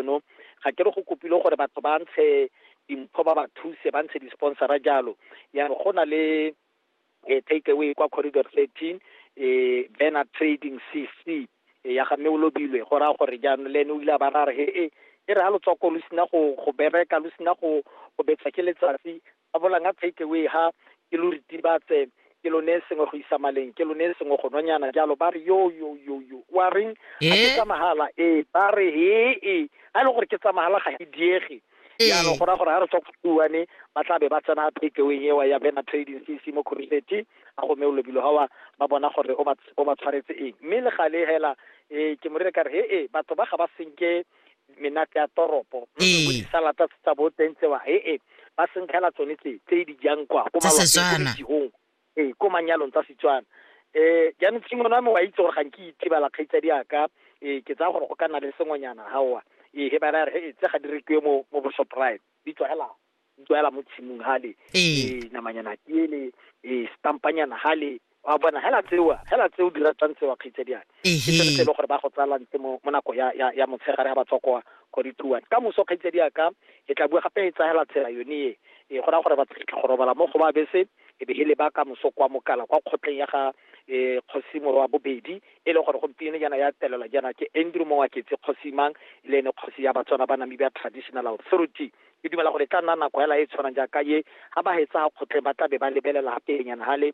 eno ga ke re go kopile gore batho ba ntshe dimpho ba ba thuse ba ntshe di-sponsora jalo ya re go na le eh, take away kwa corridor 13 eh, banner trading cc eh, ya ga mme o lobilwe go raya gore jaanong le ene o ile a ba ra re he e e re ga lotswako lo sena go go bereka lo sena go go betsa ke letsatsi ba bolang a take away ha ke lo ritibatse ke lo ne sengwe go isa maleng ke lo ne sengwe go nonyana jalo ba re yo yo yo yo wa reng a ke eh? tsa mahala ee ba re he e a e le gore ke tsa mahala ga ke diege eh. jaanong go ra gore ga re tswa go tuane ba tla be ba tsena takeaway ewa ya bena trading c c mo coruseti a gome o lobilo gawa ba bona gore o ba tshwaretse eng mme le gale hela um ke morere ka re he e batho ba ga ba senke menate ya toropo disalata tsa bo teng tsewa e e ba senkgela tsone tse tse di jang kwa ko malwaeng ee ko manyalong tsa setswana um jaanong tshimone wa me wa itse gore ga nke itebala kgaitsadi yaka um ke tsaya gore go ka nna le sengwenyana gaowa ee he ba ra re he tse ga di rekiwe mo mo bosoprite di tswagela utlwala mo tshimong hale e namanyana tiele e stampanyana hale wa bona hela tsewa hela tse o di ratang tsewa kgaitsedi yana ke selo se e le gore ba go tsala ntse mo nako ya ya ya motshegare ga ba tswa kwa go di tuwa ka moso kgaitsedi ya ka e tla bua gape e tsagela tsela yone e gora gore ba tla go robala mo go ba bese e be hele ba ka moso kwa mokala kwa kgotleng ya ga e kgosi morwa bobedi e le gore gompieno yana ya telela yana ke Andrew Mongwaketse kgosi mang le ene kgosi ya Batswana ba Namibia Traditional Authority Ke dumela gore e tla nna nako hela e e tshwanang jaaka e, ga ba hetsa kgotleng ba tla be ba lebelela ga pelenyana hale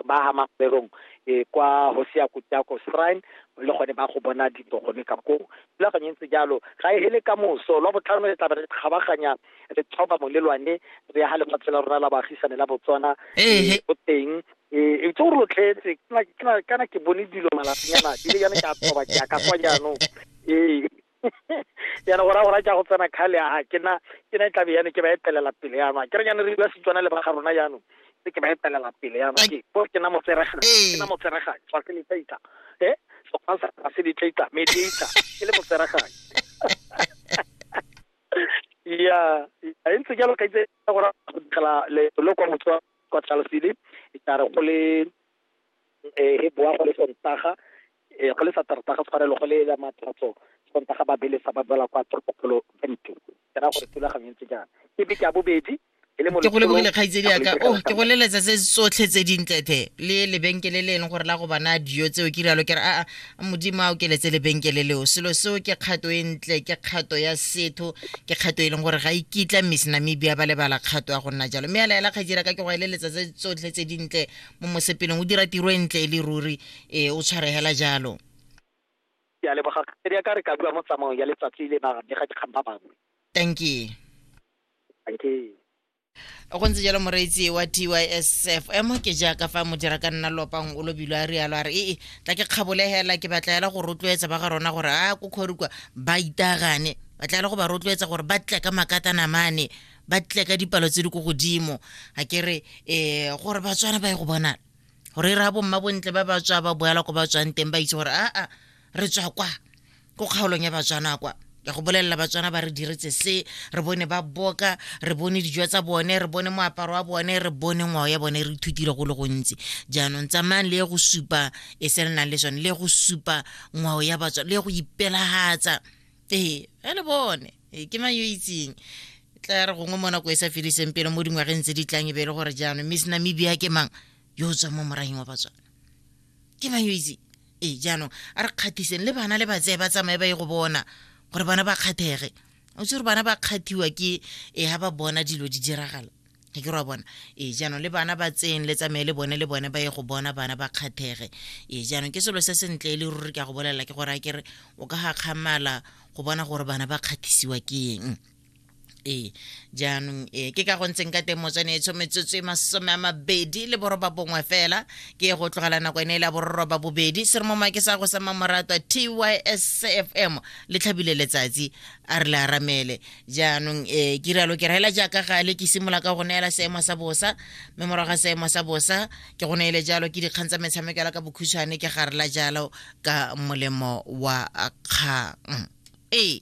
ba ha Makgwerong e kwa Hosiya Kutako Shrine le gone ba go bona dilo gone ka koo. Thulaganyo e ntse jalo, ga e hele ka moso. Lwa botlhano re tla be re kgabaganya re thoba molelwane re ya ga lefatshe la rona la baagisane la Botswana e go teng e itse gore lo tletse kana ke bone dilo malatsinyana di le yana ke a thoba ke ya ka kwa jaanong ee. yana go raya gore a ke a go tsena kgale a ke na ke na e tlabe yane ke ba etelela pele yanong a ke re yana re bua setswana le ba ga rona yanong se ke ba etelela pele yanong ke bo ke na motseregang ke na motseregang tswa se letlaitla e sekgwa sa ga se letlaitla me letlaitla ke le motseregang ya a e ntse jalo ka itse gore go dikela le lo kwa motswa kwa tlalosile e tla re go le e bua go le sontaga E, go le sa tarta ga tshwarelo go le ya matlatso sontaga ba belesa ba boela kwa toropokgolo bente ke ra gore thulaganyo e ntse jang ke beke ya bobedi e ke go lebogile kgaitsedi yaka o oh, ke go leletsa tse tsotlhe tse dintlethe le lebenkele le e leng gore la go bana dijo tseo ke rialo ke re aa modimo a o keletse lebenkele leo selo seo ke kgato e ntle ke kgato ya setho ke kgato e leng gore ga e kitla miss namibia ba lebala kgato ya go nna jalo mme a laela kgaitsedi yaka ke go e leletsa tse tsotlhe tse dintle mo mosepelong o dira tiro e ntle e le ruri Ee, o tshwaregela jalo. Ke a leboga kgaitsadi ya ka re ka bua mo tsamaong ya letsatsi le ba bega dikgang ba bangwe. Dankie. Dankie. Go ntse jalo moreetsi wa TYSFM ke jaaka fa modira ka nna lopang o lobilo a rialo a re ee tla ke kgabolegela ke batla ela go rotloetsa ba ga rona gore a ko kgorikwa ba itagane ba tla ela go ba rotloetsa gore ba tle ka makatana mane ba tle ka dipalo tse di ko godimo ga ke re um gore batswana ba ye go bonala gore re bo mma bontle ba ba tswa ba boela ko ba tswang teng ba itse gore aa re tswa kwa ko kgaolong ya batswana kwa ya go bolelela batswana ba re diretse se re bone ba boka re bone dijo tsa bone re bone moaparo wa bone re bone ngwao ya bone re ithutile go le gontsi jaanong tsamayang le go supa e se le nang le sone le go supa ngwao ya batswana le go ipelagatsa ee a le bone ee, ke mang yo itseng tla re gongwe mo nako e sa fediseng pele mo dingwageng tse di tlang e be e le gore jaanong miss namibia ke mang yo o tswang mo morayeng wa batswana ke mang yo itseng ee jaanong a re kgathiseng le bana le batseye ba tsamaye ba ye go bona gore bana ba kgathege o tse gore bana ba kgathiwa ke e ga ba bona dilo di diragala ke ke ra bona ee jaanong le bana ba tseyeng le tsamaye le bone le bone ba ye go bona bana ba kgathege ee jaanong ke selo se sentle e le ruri ke a go bolelela ke gore a kere o ka gakgamala go bona gore bana ba kgathisiwa ke eng ee jaanong ee ke ka go ntseng ka teng motswane e tsho metsotso e masome a mabedi le boroba bongwe fela ke go tlogela nako e ne e le ya bororoba bobedi se re mo make sa go sa mamoratwa tysfm le tlhabile letsatsi a re le aramele jaanong e ke rialo ke raela jaaka gale ke simolola ka go neela seemo sa bosa mme morago ga seemo sa bosa ke go neele jalo ke dikgang tsa metshameko yala ka bokhutshwane ke garela jalo ka molemo wa kgang ee